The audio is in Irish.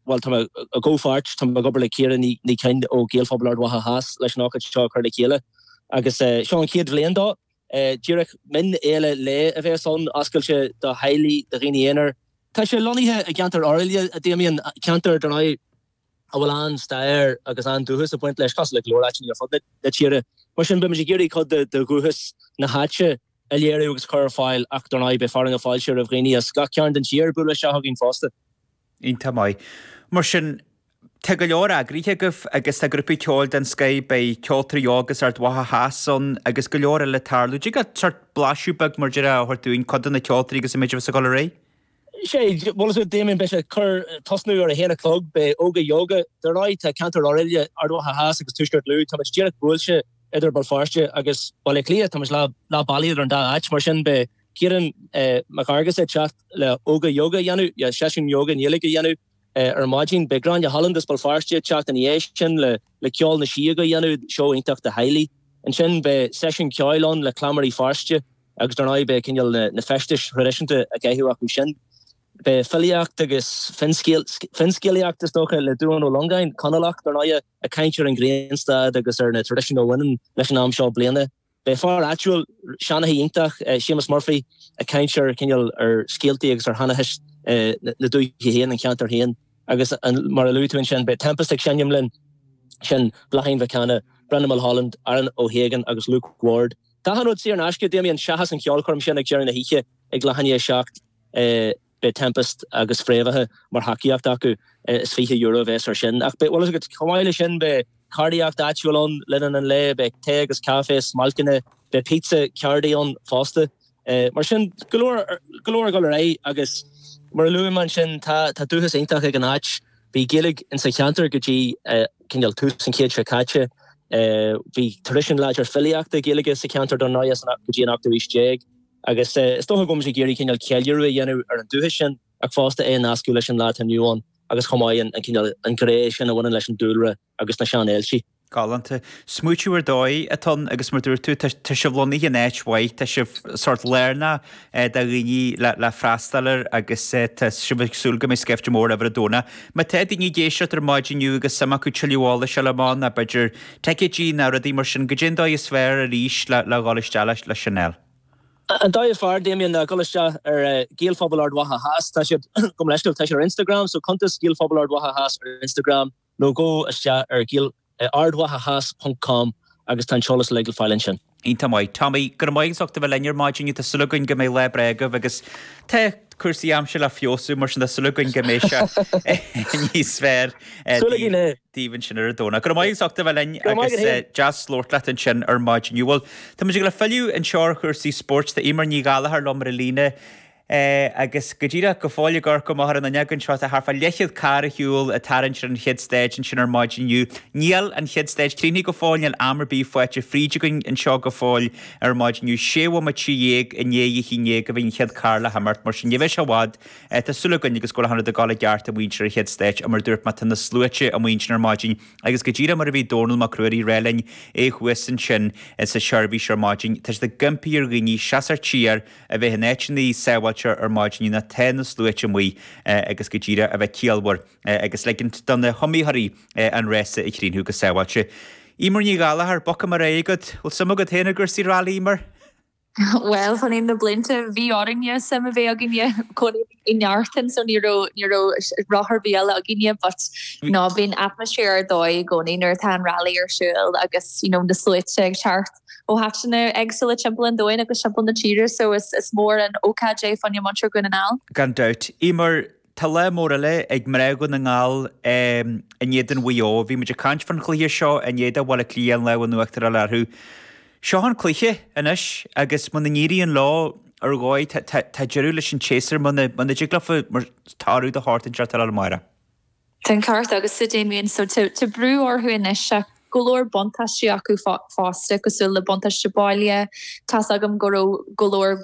Bhuel, tá mé i gcomhpháirt, tá mé ag obair le Ciara Ní Choinn ó Ghaelphobal Ard Mhacha Theas leis an ócáid seo a chur le chéile agus seo an chéad bhliain dó. Díreach mionfhéile lae a bhéas ann, oscailte do theaghlaigh, do dhaoine aonair. Tá sé lonnaithe i gceantar Oirialla, a Damien, ceantar, dar ndóigh, a bhfuil an-stair agus an-dúchas ag baint leis, cosúil le go leor áiteanna ar fud na tíre. Mar sin, beimid ag iarraidh cuid de dhúchas na háite a léiriú agus a chur ar fáil ach, dar ndóigh, beidh fearadh na fáilte roimh dhaoine as gach cearn den tír bualadh isteach againn fosta. Iontach maith. Mar sin, tá go leor eagraithe agaibh agus tá grúpaí ceoil den scoith, beidh Ceoltóirí Óga as Ard Mhacha Theas ann agus go leor eile ag tarlú. Dtig leat sórt blaiseadh beag, mar a déarfá, a thabhairt dúinn, cad iad na ceoltóirí agus an méid a bheas ag dul ar aghaidh? Sé, bhuel, Damien, beidh sé ag cur, tosnú ar a haon a chlog, beidh Óga Yoga, dar ndóigh tá ceantar Oirialla, Ard Mhacha Theas agus Tuaisceart Lú, táimid díreach buailte idir Béal Feirste agus Baile Átha Cliath, táimid leath bealaigh idir an dá áit, mar sin beidh, Ciarán Mac Fhearghusa ag teacht le Óga Yoga a dhéanamh, le seisiún ióga i nGaeilge a dhéanamh ar an maidin. Beidh Gráinne Holland as Béal Feirste ag teacht ina dhiaidh sin le Ceol na Sióg a a dhéanamh, seó iontach do theaghlaigh. Ansin beidh seisiún ceoil ann le Cleamairí Feirste agus ar ndóigh beidh cineál na feistis thraidisiúnta á gcaitheamh acu sin. Beidh filíocht agus finscéalaíocht, is dócha, le Dubhán Ó Longáin, Conallach, dar ndóigh, ag caint ar an ghrianstad agus ar na traidisiúin a bhaineann leis an am seo bliana. Beidh fear áitiúil, seanchaí iontach, Séamus Murphy, ag caint ar cineál ar scéaltaí agus ar sheanchas na dúiche féin, an cheantair féin. Agus mar a luaigh tú ansin, beidh Tempest ag seinm linn, sin Bláithín Mhic Cana, Brendan Mulholland, Aaron O Hagan agus Luke Ward. Tá achan rud saor in aisce, Damien, seachas an cheolchoirm sin ag deireadh na hoíche ag leath i ndiaidh a seacht. Beidh Tempest agus Fréamhaithe mar thacaíocht acu. Is €20 a bheas air sin. Ach chomh maith leis sin, beidh ceardaíocht áitiúil ann le linn an lae, beidh tae agus caife, smailceanna, beidh pizza ceardaí ann fosta. Mar sin, go leor ag dul ar aghaidh agus mar a luaigh mé ansin, tá dúchas iontach ag an áit. Bhí Gaeilge insa cheantar go dtí cineál tús an chéid seo caite. Bhí traidisiún láidir filíochta Gaeilge sa cheantar dar ndóigh go dtí an ochtú aois déag. Agus is dócha go bhfuil muid ag iarraidh cineál ceiliúradh a dhéanamh ar an dúiche sin ach fosta é a nascadh leis an lá atá inniu ann agus chomh maith an cineál, an ghné sin a bhaineann leis an dúlra agus na sean-ailtí. Galánta. Smaointiú ar dóigh atá ann agus mar dúirt tú, tá sibh lonnaithe in áit mhaith, tá sibh sórt lárnach do dhaoine le freastal air agus tá sibh ag súil go mbeidh scaifte mór ar ndóigh. Má tá daoine ag éisteacht ar maidin inniu agus suim acu tuilleadh eolais a fháil amach ná b'fhéidir, ticéidí ná rudaí mar sin. caidé an dóigh is fearr arís le dhul isteach le sin a fháil. An dóigh is fearr, Damien, le dhul isteach ar Gaelphobal Ard Mhacha Theas, tá siad, gabh mo leithscéal, tá siad ar Instagram, so cuntas Gaelphobal Ard Mhacha Theas ar Instagram, nó gabh isteach ar gaelardmhachatheas.com agus tá an t-eolas uilig le fáil ansin. Iontach maith, Tommy. Go raibh maith agat as ucht a bheith linn ar maidin. Tá súil againn go mbeidh lá breá agaibh agus tá cúrsaí aimsire le feabhsú, mar sin tá súil againn go mbeidh sé níos fearr Súil againn é. daoibh ansin ar an Domhnach. Go raibh maith agat as ucht a bheith linn Go raibh maith agus agat eh, féin. deas labhairt leat ansin ar maidin. Bhuel, tá muid ag gabháil a fhilleadh anseo ar chúrsaí spóirt. Tá Emer Ní Ghallachair liom ar an líne. é agus go díreach go fóill i gCorca Mhóire na nEagán seo tá thart fá leathchéad carr ar shiúl ag tarraingt ar an chéad stage ansin ar maidin inniu. Níl an chéad stage críochnaithe go fóill, níl am ar bith faighte fríd againn anseo go fóill ar maidin inniu. Sé bhomaite dhéag i ndiaidh a haon déag a bhí an chéad carr le himeacht mar sin ní bheidh sé i bhfad tá súil againn agus go bhfuil achan rud ag dul i gceart ag muintir an chéad stage ach mar a dúirt mé tá na sluaite amuigh ansin ar maidin agus go díreach mar a bhí Dónall Mac Ruairí ag ráit linn é thuas ansin sa seirbhís ar maidin tá siad ag impí ar dhaoine seasamh siar a bheith in áiteanna sábháilte ar maidin mar tá na sluaite amuigh agus go díreach a bheith ciallmhar agus ligint do na hiomaitheoirí an rása a chríochnú go sábháilte. Emer Ní Ghallachair, bocsa mar é agat, bhfuil suim agat féin i gcúrsaí railí, Emer? Bhuel, chun na blianta bhí orainne suim a bheith againne chun. i nGartán so ní raibh ní raibh rogha ar bith eile againne but you know bíonn atmosphere ar dóigh i gcónaí nuair atá an rally ar siúil agus you know na sluaite ag teacht ó áiteanna éagsúla timpeall an domhain agus timpeall na tíre so is is mór an ócáid é fá choinne muintir Dhún na nGall. Gan dabht. Emer, tá lá mór eile ag mná Dhún na nGall in éadan Mhaigh Eo. Bhí muid ag caint faoin chluiche seo i ndiaidh do Bhaile Átha Cliath an lámh in uachtar a fháil orthu. Seo an cluiche anois agus muna n-éiríonn leo ar dhóigh tá deireadh leis an tséasúr, muna dtig leofa mar toradh de shórt inteacht a fháil amárach. Sin ceart agus sa dé mhéan so tá brú orthu anois ach go leor buntáistí acu fosta cosúil le buntáiste baile, tá's agam go raibh go leor,